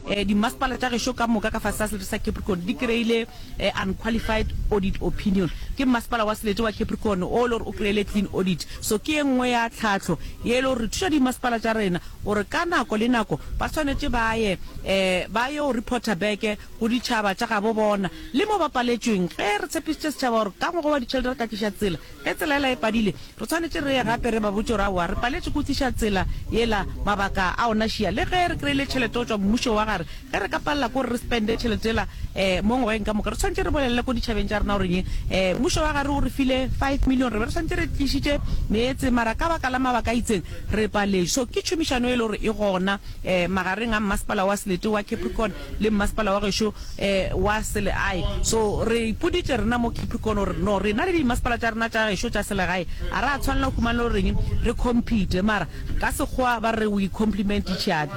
Dimasepala tša gešo ka moka ka fase sa Selete sa Capricorn di kry-ile Unqualified Audit Opinion. Ke mmasepala wa Selete wa Capricorn o e le gore o kry-ile Clean Audit. So ke ye nngwe ya tlhahlo ye e le gore re thuša dimasepala tša rena gore ka nako le nako ba swanetše ba ye ba yo reporter back go ditšhaba tša gabo bona le mo ba paletšweng. Ge re tshepišitše setšhaba gore ka ngwaga wa ditšhelete re ka tliša tsela Ge tsela yela e padile, re swanetše re ye gape re ba botše gore aowa, re paletše ke go tliša tsela yela mabaka a ona šia. Le ge re kreile tšhelete go tšwa mmušong wa gare, ge re ka palela ke gore re spende tšhelete yela um mo ngwageng ka moka, re swanetše re bolelele ko ditšhabeng tša rena gore eng, um mmušo wa gare o re file five million, re be re swanetše re tlišitše meetse, mara ka baka la mabaka a itseng re paletše. So ke tšhomišano e le gore e gona um magareng a mmasepala wa Seletewa, Capricorn, le mmasepala wa gešo wa selegae. So re ipoditše rena mo Capricorn gore no rena le dimmasepala tša rena tša gešo tša selegae a ra tshwanela go humana le gore reng re compete mara ka sekgowa ba re we compliment each other.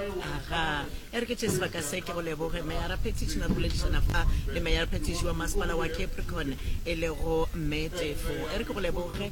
Aha, e re ke tšee sebaka se ke go leboge Meyara Petition re boledišana fa le Meyara Petition wa mmasepala wa Capricorn e lego Mme Tefo. E re ke go leboge.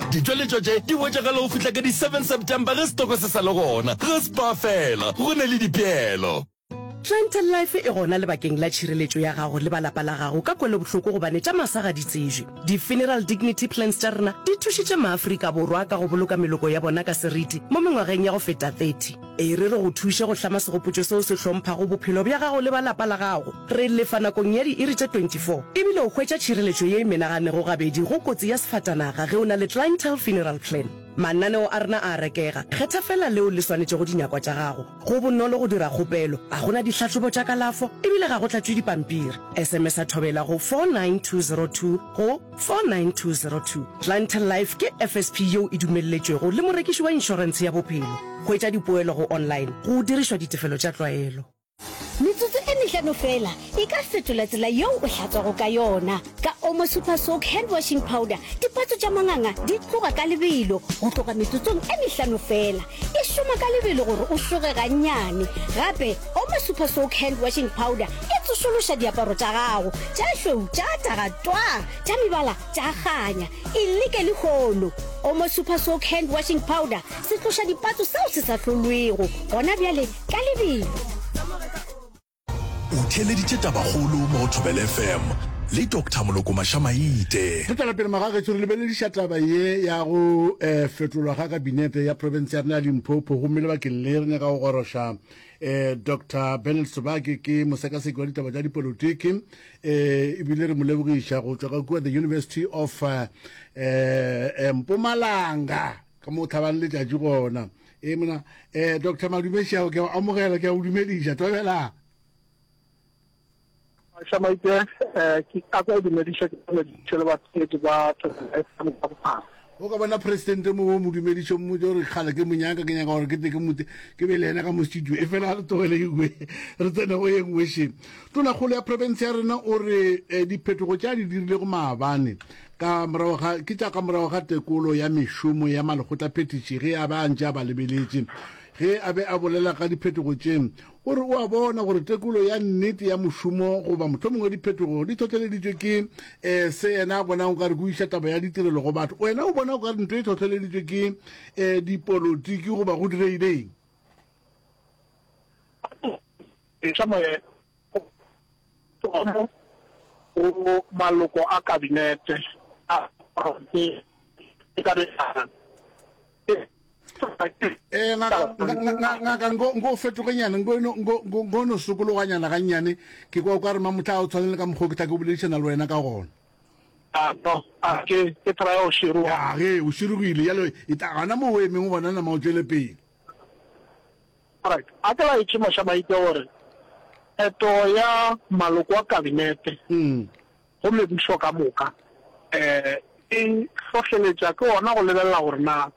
Ditšweletšo tše di hwetšagala go fihla ka di 7 September ge setoko se sa le gona. Ge spa fela, go na le dipeelo. Planter Life e gona lebakeng la tšhireletšo ya gago le ba lapa la gago ka kwelobohloko gobane tša masa ga di tsejwe. Di-Funeral Dignity Plans tša rena di thušitše Maafrika Borwa ka go boloka meloko ya bona ka seriti mo mengwageng ya go feta 30. E re re go thuše go hlama segopotšo seo se hlomphago bophelo bja gago le ba lapa la gago. Re lefa nakong ya diiri tše 24 ebile o hwetša tšhireletšo ye e menaganego gabedi go kotsi ya sefatanaga ge o na le Clientele Funeral Plan. Mananeo a rena a a rekega. Kgetha feela leo le swanetšego dinyakwa tša gago. Go bonolo go dira kgopelo. Ga go na dihlahlobo tša kalafo ebile ga go tlatšwe dipampiri. SMS-a Thobela go 49202 go. Tso 9202, Planter Life ke FSP yeo e dumelletšwego le morekiši wa inšorense ya bophelo. Hwetša dipoelo go online go dirišwa ditefelo tša tlwaelo. Metsotso e mehlano feela e ka fetola tsela yeo o hlatswago ka yona. Ka Omo Super Soak Hand Washing Powder, dipatso tša manganga di tloga ka lebelo go tloga metsotsong e mehlano feela. E šoma ka lebelo gore o šoge gannyane. Gape, Oma Super Soak Hand Washing Powder e tsošološa diaparo tša gago tša šweu tša taga twaa, tša mebala tša kganya. E leke lehono! Oma Super Soak Hand Washing Powder se tloša dipatso seo se sa hlolwego gona bjale ka lebelo. O theeleditše tabakgolo mo go Thobela FM le Doctor Moloko Mašamaite. Re tšwela pele magagešo re lebelediša taba ye ya go um fetolwa ga kabinete ya profense ya rena ya Limpopo gomme lebakeng le re nyaka go goroša um Doctor Bernard Sobake ke mosekaseki wa ditaba tša dipolotiki um ebile re mo lebogiša go tšwa ka kua the University of um Mpumalanga ka mo tlhabang letšatši gona e mona um eh, doctor madumešago ke amogela ke a go dumediša tobela shamaite um eh, ke ka kwa dumediša ke dumediše le batsedi ba o ka bona presidente mo o mo dumedišo mo jo re kgale ke monyaka ke nyaka gore ke te ke mote ke be le ena ka mo studio e fela re tlogele engwe re tsene go ye nngwe sheng tonakgolo ya province ya rena o re um diphetogo tša di dirilego maabane Ka morago ga, ke tša ka morago ga tekolo ya mešomo ya malekgotlaphethiši ge a be a ntše a ba lebeletše, ge a be a bolela ka diphetogo tše, o re o a bona gore tekolo ya nnete ya mošomo goba mohlomongwe diphetogo di hlohleleditšwe ke um se yena a bonang o ka re ke o iša taba ya ditirelo go batho. Wena o bona o ka re ntho e hlohleleditšwe ke um dipolotiki goba go direileng? Eupša moya Tsomo go maloko a Kabinete a Profense e ka begana. Eh, ngaka nko fetogenyana nko no sokologanyana gannyane ke kwa o ka re mamotla o tshwanele ka mokgwa ke tla ke boledišana le wena ka gona ke try o shiroga ge o shirogile yalo e ta gana mo o emeng o bona nama o tšwele pele A ke ba etše mosha ba itwa gore pheto ya maloko a kabinete gomme pušo ka moka e hlohleletša ke gona go lebelela gore na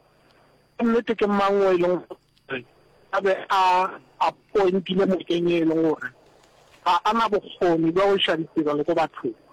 ka nnete ke mang yo e leng gore a be a apointile mokeng yo e leng gore ga a na bokgoni bja go iša ditirelo ko bathong.